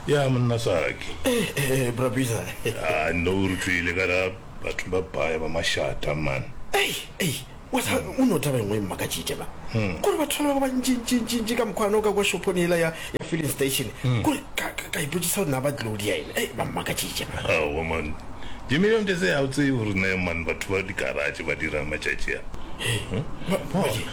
ya monna saki eh, eh, eh, brabisa a ah, no re tswile ka ra batho ba baya ba mashata man o no taba engwe e mmaka tšite ba hmm. kore batho ba ba bantšintšintšintši ka mokgwana o ka kwa shophone ela ya filling station hmm. kore ka ipotsisa gore na ba tlodi ya ene ba mmaka tšite ba man dimilion tse ga o tsee gore ne man batho ba dikaratše ba dirang matšatši a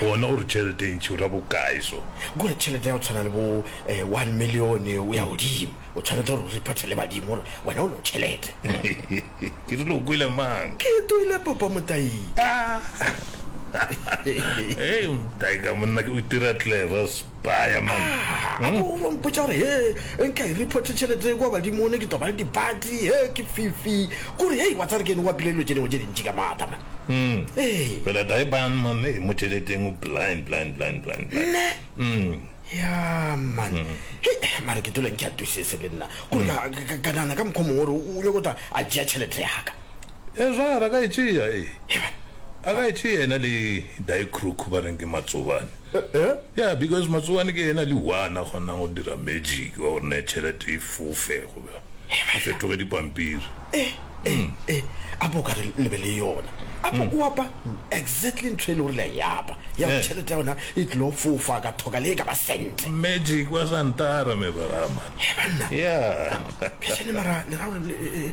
Gona o re tšhelete e ntši o ra bokae so? Kua tšhelete ya go tshwana le bo one milione o ya godimo. O tshwanetse gore o reportele badimo gore wena o lo tšhelete. Ke rile o kwele mang? Ke toile papa Motayi. Hei Motayi ka monna ke o itira clever so. Ba ya man. Ga o no mpotša gore hee nka e report tšhelete kwa badimo ne ke tlo ba le dipati hee ke fifi kore hei wa tsare ke ne wa pile dilo tše dingwe tše dintši ka maata man. Ee. Fela die ban man ee mo tšheleteng o blind blind blind blind blind. Nne? Umm. Ya man. Hei mare ke dula ntšatusese le nna kore ka ka ka nana ka mokgwa mongwe gore o nyoko tla a tšea tšhelete ya ka. Ezwa a re a ka e tšea, ee, a ka e tšea yena le Daikruku ba reng ke matsobane. Ya, because matsobane ke yena le one a kgonang go dira magic wa gore ne tšhelete e fofe goba e fetoge dipampiri. Ee, a bo o ka re le be le yona. A bo o apa exactly ntho e le gore le a e apa, ya gore tšhelete ya yona e tlilo fofa ka thoka le e ka ba cent. Magic wa Santara, me Barama. Hee, banna! Ya. Phešane mara le ra gore le,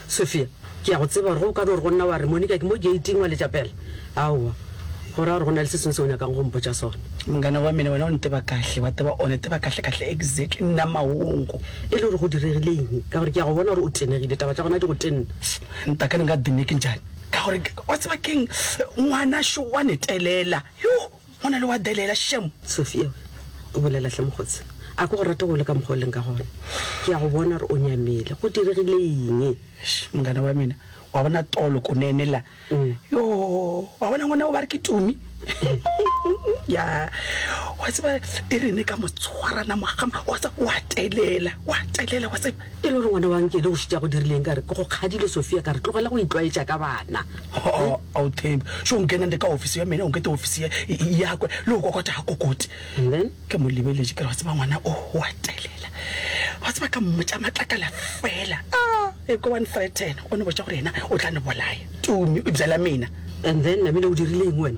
Sophia, Ke a go tseba gore ge o ka no re go nna wa re, Monica, ke mo geiting, wa letša pela. Aowa. Go ra gore go na le se sengwe se o nyakago go mpotša sona. Mongane wa mene, wena o nteba kahle, wa tseba, o neteba kahlekahle, exactly, nna maongo, e le gore go diregile eng, ka gore ke a go bona gore o tenegile, taba tša gona di go tenna. Ntaka, Nka di make njani? Ka gore, wa tseba ke'ng, ngwana šo wa netelela, yoh! Go na le wa delela šemo. Sofia, O bolela hle mokgotse. A ke go rate go le ka mokgwa o leng ka gona. Ke a go bona gore o nyamile. Go diregile eng? Eish, mongane wa mina. Wa bona Tolo Kunene la? Yoo, wa bona ngwana o ba re ke Tumi? Ya, wa tseba e re ne ka mo tshwarana mogama, wa tseba wa telela, wa telela, wa tseba. E le gore ngwana wa Nkele o šitša go dirileng ka re ke go kgadile Sofia ka re tlogela go itlwaetša ka bana. Ho-o, ao Thembi, šo nkena nde ka ofisi ya mene o nkete ofisi ye e yakwe le go kokota ga kokoti. And then? Ke mo lebeletše ke re wa tseba ngwana o o a telela. Wa tseba ka mmotša matlakala fela. Aa, e ko wa nthreaten o no botša gore yena o tla no bolaya Tumi eupša la mena. And then Namile o dirile eng wena?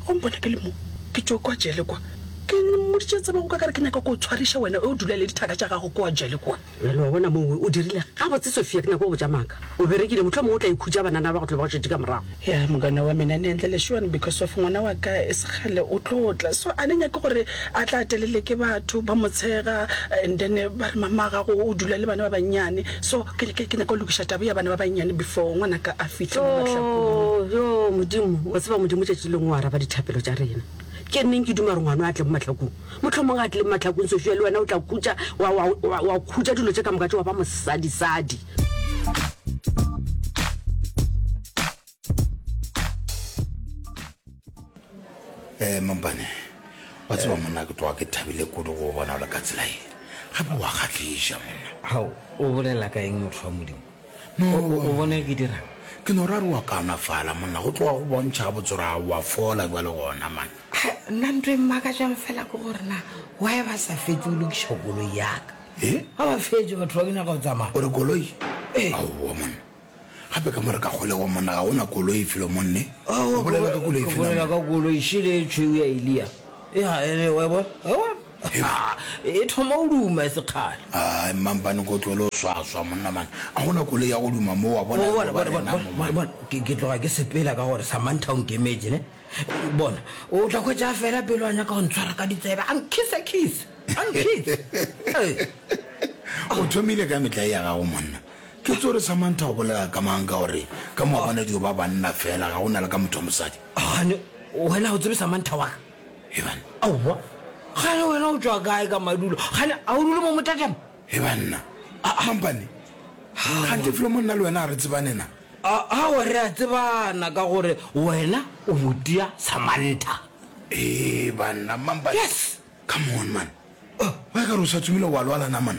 Go mpona ke le mo ke tšo kwa jele kwa. Ke mmoditše tsebe o ka kare ke nyaka ko tshwariša wena o dula le dithaka tša gago kwa jele kwa. Bjale wa bona mongwe o dirile gabotse Sofia ke nyaka go botša maaka o berekile mohlomongwe o tla ikhutša banana ba go tlo ba go šetše ka morago. Ya mokana wa mina ne ntle lešuan because of ngwana wa ka e se kgale o tlo tla so a ne nyake gore a tla telele ke batho ba mo tshega and then ba re mama gago o dula le bana ba bannyane so ke ke nyaka go lokiša taba ya bana ba bannyane before ngwana ka a fihle mo mahlakong. Yoo yoo Modimo wa tseba Modimo tšatši lengwe o araba dithapelo tša rena. Ke nneng ke duma gore ngwano a tle mo mahlakong. Mohlomong a tle mo mahlakong, Sofia, le wena o tla khutša, wa, wa, wa, wa khutša dilo tše ka moka tše wa ba mosadisadi. Eh, mampane wa tseba monna ke tloga ke thabile kudu go bona o le ka tsela e gape wa kgahliša monna Hao, o bolela ka eng motho wa Modimo? no o bone ke dira ke no ra re wa kaonafala monna go tloga go bontšha ga botsora gago wa fola jwa le gona mane nna nto e mmaka jang fela ke gore na wa e ba sa fetse o lokiša koloi yaka e ga ba fetse batho ba bina ga o tsamaya ore koloi ee aowa monna gape ka mo re ka kgolego monna ga gona koloi e felo monne bolela ka koloi e fela ka koloi šele e tšhweu ya elia e ga ene wa e bona He, e thoma o duma e se kgale. A, mmampane ko tlohele go swaswa, monna man. A go na koloi ya go duma mo, wa bona, e Bona, tlo ba bona, bona, rena mo, bona, man. bona, ke ke tloga ke sepela ka gore Samantha o nkemetse, ne? Bona, o tla hwetša a fela pelo a nyaka go ntshwara ka ditsebe, a nkhisa kiss, a nkhisa. Ee. O thomile ka metlae ya gago, monna. Ke tso re Samantha o bolela ka mang ka gore ka mo wa bona dio ba banna fela, ga go na le ka motho wa mosadi. Gane, wena ga o tsebe Samantha wa ka? Ebanna, Aowa, kgale wena o tšwa kae ka madulo? Kgale a o dule mo motatama? Ebanna, Aa, mampane, gante felo mo nna le wena a re tsebane na? Aowa, re a tsebana ka gore wena o motia Samantha. Ebanna, mampane, come on man. Oh, wa e ka re o sa tsomile wa lwala naman.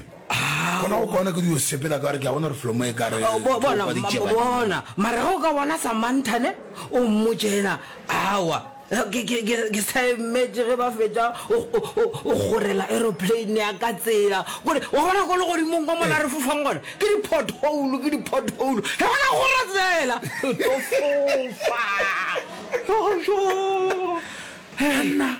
Gona go kwana ke di yo sepela ka re ke a bona re flomo e ka re Ao, bo- bona thopa ditšeba. ma- bona mara ge o ka bona samanthane o mmotse ena awa ke- ke- ke- ke sa emetse ge ba fetša o- o- o o gorela aeroplane ya ka tsela kore wa bona ko legodimong kwa mona re fofang gona ke di-pothole ke di-pothole ge gona gore tsela re tlo fofa Ojo. Anna,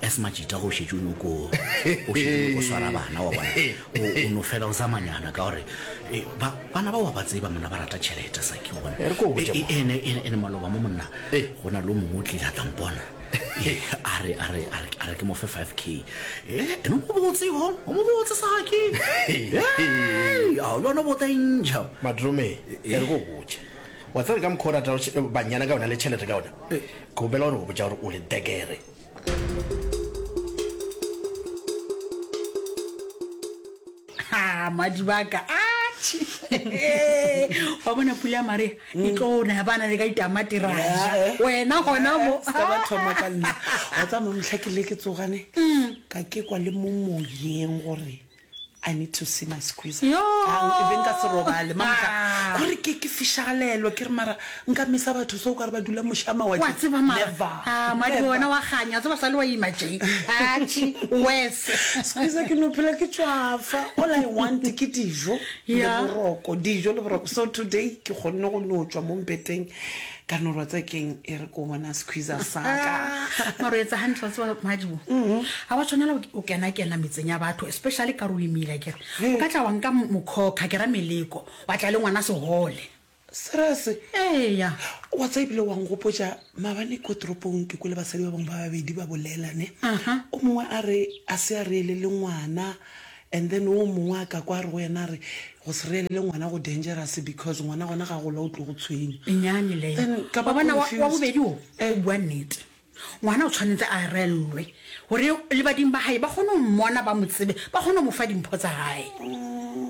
As majita go šetše o nyoko o šetše go swara bana wa bona o no fela o zamanyana ka gore e, ba bana ba wa ba tseba mona ba rata tšhelete sa ke bona e, e, ene ene maloba mo monna go na lo mongwe o tlile a tampona a re a re a re ke mo fe 5k eh ene o botse ho o mo botse sa ke eh a lo no bota inja madrome e re go botse wa tsere ka mkhora ta banyana ka ona le tšhelete ka ona go bela gore go botsa gore o le degere ha madibaka atšhi wa bona pula ya marea e tlo na ya bana le ka ditamati ra ja Eh, eh. wena gona mo Eh, se ka ba thoma ka nna wa tsa mamotlha ke le ke tsogane ka ke kwa le mo moyeng gore I need to see my squeezer. Yoh! Ke be nka se robale. Mama tla, Ah! gore ke, ke fishagalelwa. Ke re, mara, nka misa batho so o ka re ba dula moše a mawatle. Wa tseba mara, Never. Ah, Madi Never. wena wa kganya. Wa tseba o sa le wa ima tše. Atšhe, worse. Squeezer ke no phela ke tšwafa. All I want ke dijo le Yeah. boroko. Dijo le boroko. So today ke kgonne go no tšwa mo mpeteng. Ka no rwatsa keng e re ko bona squeezer sa ka. Mara o etsa hantle wa tseba Madibo. Ha wa tshwanela o- o kena kena metseng ya batho especially ka re o imile akere. He. O ka tla wa nka mo- mokhokha ke ra meleko wa tla le ngwana sehole. Serious? Eya. Wa tseba ebile wa nkgopotša maabane ko toropong ke kwele basadi ba bangwe ba babedi ba bolela ne. Aha. O mongwe a re a se a reele le ngwana And then wo mongwe a ka kwa a re go yena a re go se reelele ngwana go dangerous because ngwana gona ga gola o tlo go tshwenya. E nnyane leyo. Then ka ba Wabona wa wa confused. bobedi wo o bua nnete. Ngwana o tshwanetse a reellwe gore le badimo ba hae ba kgone go mmona ba mo tsebe ba kgone go mo fa dimpho tsa gae.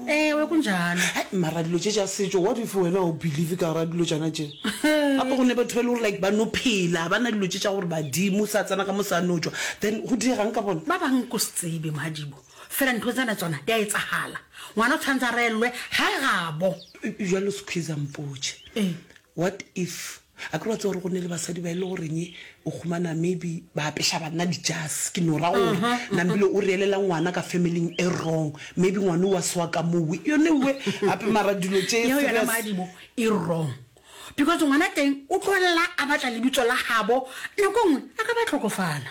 Ewe go njalo. Hai, mara dilo tše tša setšo what if wena o believe ka gora dilo tšana tše gape go ne batho ba e le gore like ba no phela ba na dilo tše tša gore badimo sa tsena ka mo sa no tšwa then go diegang ka bona Ba bang ko se tsebe Madibo. Fela ntho tsena tsona di a etsagala. Ngwana o tshwanetse a reellwe ga gabo. Bjalo Squeezer mpotše. Ee. What if a kere wa tse gore go ne le basadi ba e le goreng o khumana maybe ba apeša banna dijase ke no ra gore nambile o reelela ngwana ka familling e wrong maybe ngwane o wa sewa ka mowe yone uwe gape mara dilo tše Yeo yona maadimo e wrong because ngwana teng o tlolela a batla lebitso la gabo nako nngwe a ka ba tlhokofala.